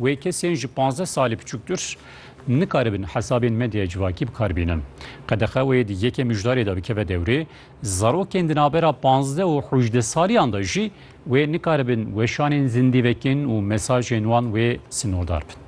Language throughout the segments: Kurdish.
Wê kesên ji pazdeh salî biçûktir nikaribin hesabên medyaya civakî bikar bînin. Qedexe wê di yeke mijdarê de bikeve dewrê, zarokên di navbera pazdeh û hûjdeh saliyan de jî wê nikaribin weşanên zindî vekin û mesajên wan wê sinordar bin.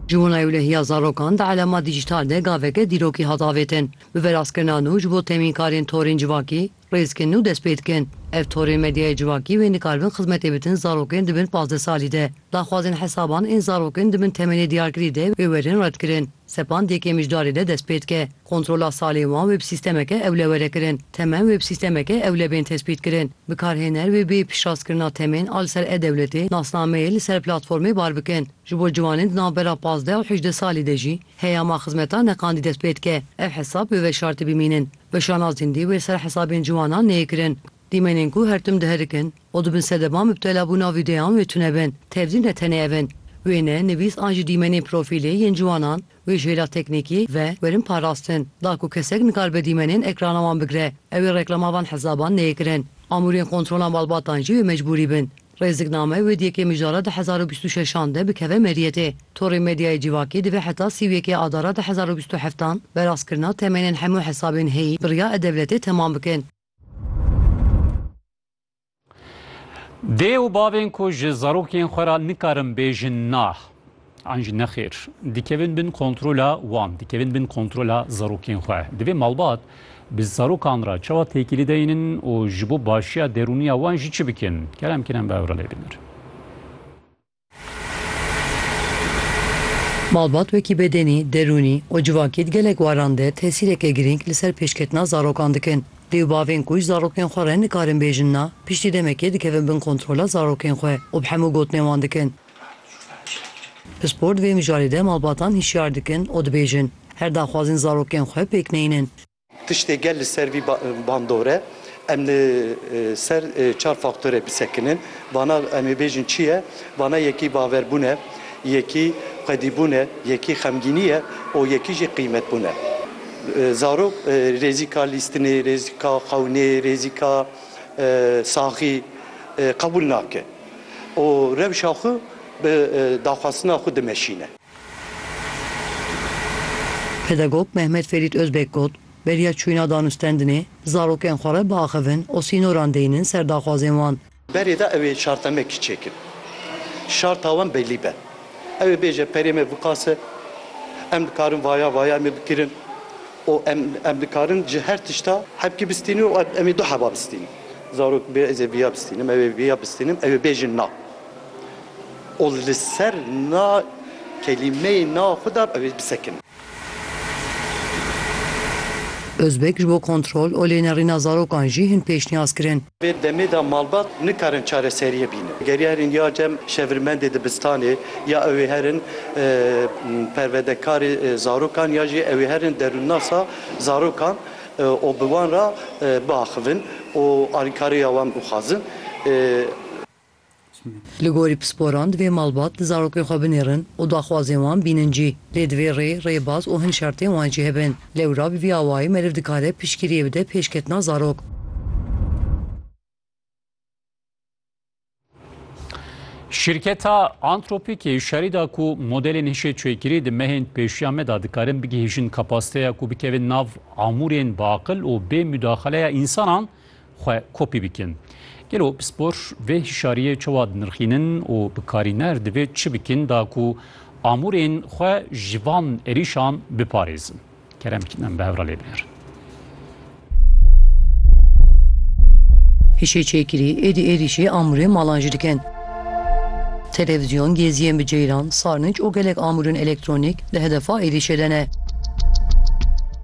Ji wana Ewlehiya Zarokan di Elema Dîjîtal de gaveke dîrokî hat avêtin. Bi verastkirina nû ji bo temînkarên torên civakî, Rêzkin û dest pê dikin. Ev torên medyaya civakî bên dikaribin xizmetê bidin zarokên di bin pazdeh salî de. Daxwazên hesaban ên zarokên di bin temenê diyarkirî de wê werin redkirin. Sepan di yekê mijdarê de dest pê dike. Kontrola salên wan wê bi sîstemeke ewle were kirin. Temen wê bi sîstemeke ewle bên tespîtkirin. Bikarhêner wê bê piştrazkirina temên a li ser e-dewletê nasnameyê li ser platformê bar bikin. Ji bo ciwanên di navbera pazdeh û hejdeh salî de jî heyama xizmeta neqandî dest pê dike. Ev hesab wê veşartî bimînin. Bi şanazîn dî wê ser hesabên ciwanan neyê kirin. Dîmenên ku her tim diherikin û dibin sedeban mubtelabûna vîdeoyan wê tune bin. Tevdî ne tenê ev in. Wêne, nivîs an jî dîmenên profîlê yên ciwanan wê ji hêla teknîkî ve werin parastin. Da ku kesek nikaribe dîmenên ekrana wan bigire, ew ê reklama van hesaban neyê kirin. Amûrên kontrola malbatan jî wê mecbûrî bin. Rêzikname wê di yekê mijara du hezar û bîst û şeşan de bikeve meriyetê. Torê medyayê civakê divê heta sî û yekê adara du hezar û bîst û heft an bi rastkirina temênên hemû hesabên heyî bi riya e-dewletê temam bikin. Dê û bavên ku ji zarokên xwe re nikarin bêjin nah, An jî nexêr, dikevin bin kontrola wan, dikevin bin kontrola zarokên xwe. Divê malbat bi zarokan re çawa têkilî deynin û ji bo başiya derûniya wan jî çi bikin? Kerem Kinan bi Ewrelê bînir. Malbat wekî bedenî, derûnî û civakî di gelek waran de tesîreke girîng li ser pêşketina zarokan dikin. Dê û bavên ku ji zarokên xwe re nikarin bêjin na, piştî demekê dikevin bin kontrola zarokên xwe û bi hemû gotinên wan dikin. Pispor di vê mijarê de malbatan hişyar dikin û dibêjin, her daxwazên zarokên xwe pêk neynin. Tiştê gel li ser vî bandor e, em li ser çar faktorê bisekinin. Vana em ê bêjin çi ye? Vana yekî baverbûn e, yekî xwedîbûn e, yekî xemgînî ye û yekî jî qîmetbûn e. Zarok rêzîka lîstinê, rêzîka xewnê, rêzîka saxî qebûl nake. û rewşa xwe bi daxwastina xwe dimeşîne. Pedagog Mehmet Ferît Ozbek got, Beriya çûyîna danûstendinê, zarokên xwe re biaxivin û sînoran deynin ser daxwazên wan. Berê de ew ê şartemekî çêkin, şarta wan belî be. Ew ê bêje perê me biqase, em dikarin vaya vaya em ê bikirin. û em em dikarin ji her tişta hevkî bistînin û em ê du heva bistînin. Zarok bê ez ê vêya bistînim, ew ê vêya bistînim, ew ê bêjin na. Û li ser na kelîmeyê na xwe de ew ê bisekinin. Ozbek ji bo kontrol û lênerîna zarokan jî hin pêşniyaz kirin. Vê demê de malbat nikarin çareseriyê bînin. Geriyarên ya cem şevirmendê dibistanê, ya ew ê herin perwedekarê zarokan ya jî ew ê herin derûnnasa zarokan û bi wan re biaxivin û alîkarê ya wan bixwazin. Li gorî pisporan divê malbat di zarokê xwe binêrin û daxwazên wan bînin cî. Lê divê rê, rêbaz û hin şertên wan jî hebin. Lewra bi vî awayî meriv dikare piştgiriyê bide pêşketina zarok. Şîrketa Anthropic yê şerî da ku modelên hişê çêkirî di mehên pêşiya me da dikarin bigihîjin kapasiteya ku bikevin nav amûrên bi aqil û bê mudaxaleya însanan xwe kopî bikin. Gelo pispor vê hişariyê çawa dinirxînin û bikarîner divê çi bikin da ku amûrên xwe ji van êrîşan biparêzin? Kerem bikin em bi hev re lê binerin. Hişê çêkirî, êdî êrîşê amûrên malan jî dikin. Televizyon, geziyên bi ceyran, sarnıc û gelek amûrên elektronîk di hedefa êrîşê de ne.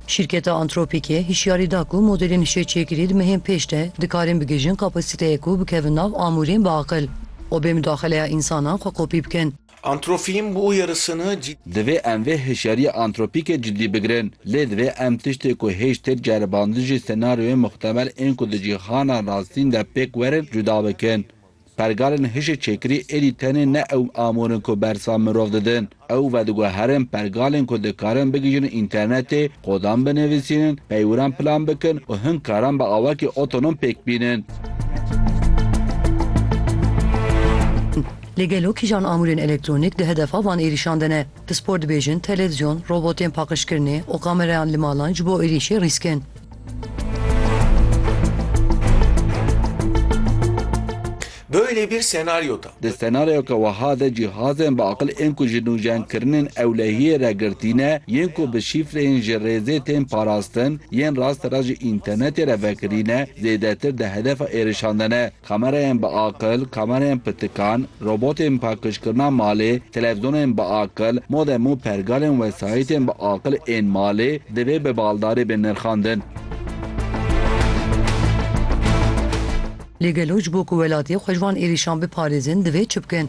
Şîrketa Anthropic-ê hişyarî da ku modelên hişê-çêkirî di mehên pêş de dikarin bigihîjin kapasiteyê ku bikevin nav amûrên bi aqil û bê mudaxeleya însanan xwe kopî bikin. Anthropic-ên bû yarısını cid. Divê em vê hişyariya Anthropic-ê cidî bigirin, lê divê em tiştê ku hêj têk ceribandin jî senaryoyên mixtemel ên ku di cîhana rastîn de pêk werin cuda bikin. Pergalên hişê çêkirî êdî tenê ne ew amûr in ku bersa mirov didin. Ew vediguherin pergalên ku dikarin bigihîjin înternetê, kodan binivîsînin, peywiran plan bikin û hin karan bi awakî otonom pêk bînin. Lê gelo kîjan amûrên elektronîk di hedefa van êrîşan de ne? Pispor dibêjin televizyon, robotên paqijkirinê û kamereyan li malan ji bo êrîşê rîsk in. Böyle bir senaryoda. Di senaryoka wiha de cîhazên bi aqil ên ku ji nûjenkirinên ewlehiyê re girtî ne, yên ku bi şîfreyên ji rêzê tên parastin, yên rastera ji înternetê re vekirî ne, zêdetir di hedefa êrişan de ne. Kamerayên bi aqil, kamerayên pirtikan, robotên pakijkirina malê, televzonên bi aqil, modem û pergalên wesayîtên bi aqil ên malê divê bi baldarî bên nirxandin. Lê gelo ji bo ku welatê xwe ji van êrîşan biparêzin divê çi bikin?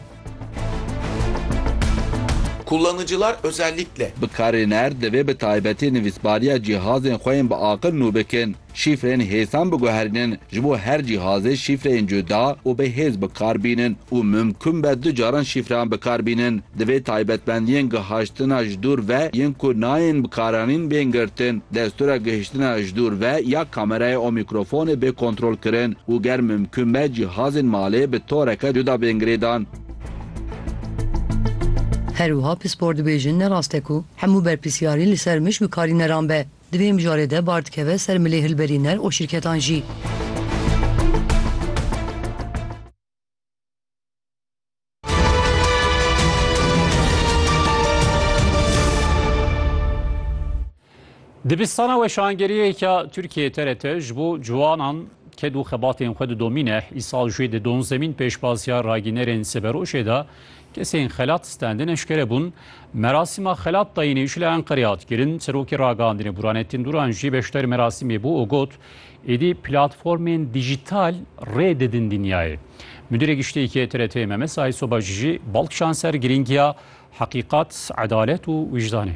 Kullanıcılar özellikle. Bikarîner divê bi taybetî nivîsbariya cîhazên xwe yên bi aqil nû bikin. Şîfreyên hêsan biguherînin, ji bo her cîhazê şîfreyên cuda û bi hêz bikar bînin û mimkûn be du caran şîfreyan bikar bînin. Divê taybetmendiyên gihaştina ji dûr ve yên ku nayên bikaranîn bên girtin, destûra gihiştina ji dûr ve ya kamerayê û mîkrofonê bê kontrolkirin û ger mimkûn be cîhazên malê bi toreke cuda bên girêdan. Herwiha pispor dibêjin ne rast e ku hemû berpirsiyarî li ser mij bi karîneran be. Divê mijarê de bar dikeve ser milê hilberîner û şîrketan jî. Dibistana weşangeriyê ya Tirkiyeyê TRT ji bo ciwanan ked û xebatên xwe didomîne. Îsal jê di Donzemîn pêşbaziya ragînerên Seberojê de Kesên xelat stendin eşkere bûn. Merasîma xelat dayînê ji li Enqerê hat kirin. Serokê ragihandinê Burhanettin Duran jî beşdar merasîmê bû û got, Êdî platformên dîjîtal rê didin dinyayê. Mudîrê Giştî yê TRT'ê Memes Aysobaş jî bal kişand ser girîngiya heqîqat, edalet û wîjdanê.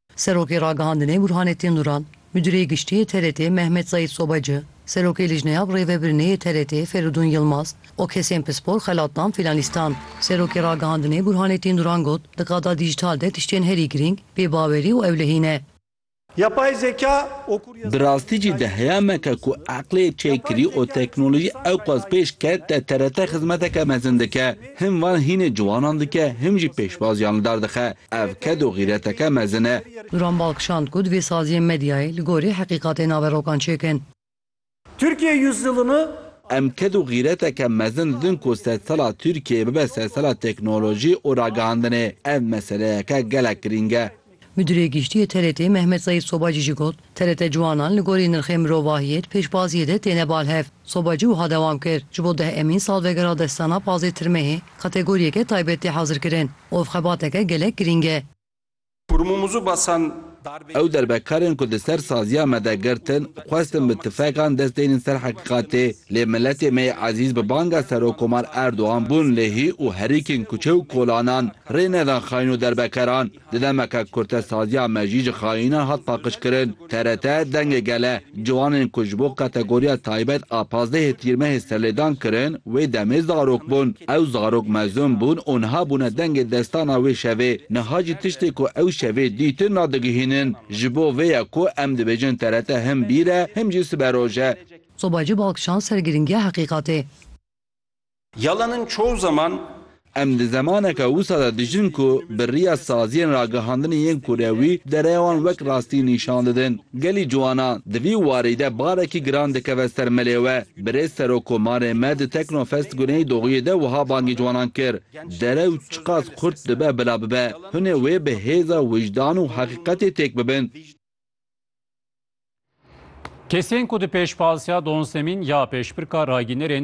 Serokê Ragihandinê Burhanettin Duran, Mudîrê Giştî yê TRT'ê Mehmet Zeîd Sobacı, Serokê Lijneya bi Rêvebirinê yê TRT'ê Feridun Yilmaz û kesên pispor xelat dan fînalîstan. Serokê Ragihandinê Burhanettin Duran got, Di qada dîjîtal de tiştên herî girîng pêbawerî û ewlehî ne. Yapay zeka û Bi kuryazîya rastî jî dîjîtalî di heye dîsa me ke ku destpêkirî ye. eqlê Yapay çêkirî û zeka li ser teknolojî dîsa ewqas dîsa pêş ke te TRT xizmeteke mezin dike. Him van hînê ciwanan dike him jî pêşbaziyan li dar dixe. Ev ked û xîreteke mezin e. Duran bal kişand ku divê saziyên medyayê li gorî heqîqatê naverokan çêkin. Türkiye Yüzyılını. Em ked û xîreteke mezin didin ku sedsala Tirkiyeyê bibe sedsala teknolojî û ragihandinê. Ev meseleyeke gelek girîng e. Midurê Giştî yê TRT'ê Mehmet Zeîf Sobacî jî got, TRT Ciwanan li gorî nirxê mirovahiyê di pêşbaziyê de têne bal hev. Soba cî wiha dewam kir, Ji bo deh emîn salvegera destana Pazê Tirmehê kategoriyeke taybet tê hezirkirin û ev xebateke gelek girîng e. Kurumumuzu basan darbê Ew derbekarên ku di ser saziya me de girtin, xwestin bi tifekan dest deynin ser heqîqatê. Lê miletê me yê ezîz bi banga Serokkomar Erdogan bûn lê hî û herikên kuçe û kolanan rê nedan xaîn û derbekeran. Di demeke kurtesaziya me jî ji xayînan hat paqijkirin. TRT, Dengê Gele, ciwanên ku ji bo kategoriya taybet a pazdehê Tîrmehê serlêdan kirin, wê demê zarok bûn. Ew zarok mezin bûn û niha bûne dengê destana wê şevê. Niha jî tiştê ku ew şevê dîtin nadigihînin. Ji bo vê ye ku em dibêjin TRT him bîr e him jî siberoj e. Soba ji balkişan ser girîngiya heqîqatê. Yalan in çoğu zaman. Em di zemaneke wisa de dijîn ku bi riya saziyên ragihandinê yên kurewî dereya wan wek rastî nîşan didin. Gelî ciwanan di vî warî de barekî giran dikeve ser melê we. Birêz Serokkomarê me di Teknofest Guney Doğuyê de wiha bangê ciwanan kir, Derew çiqas xurt dibe bila bibe, hunê wê bi hêza wijdan û heqîqetê têk bibin. Kesên ku di pêşpalsiya Don Semîn ya pêşbirka ragînerên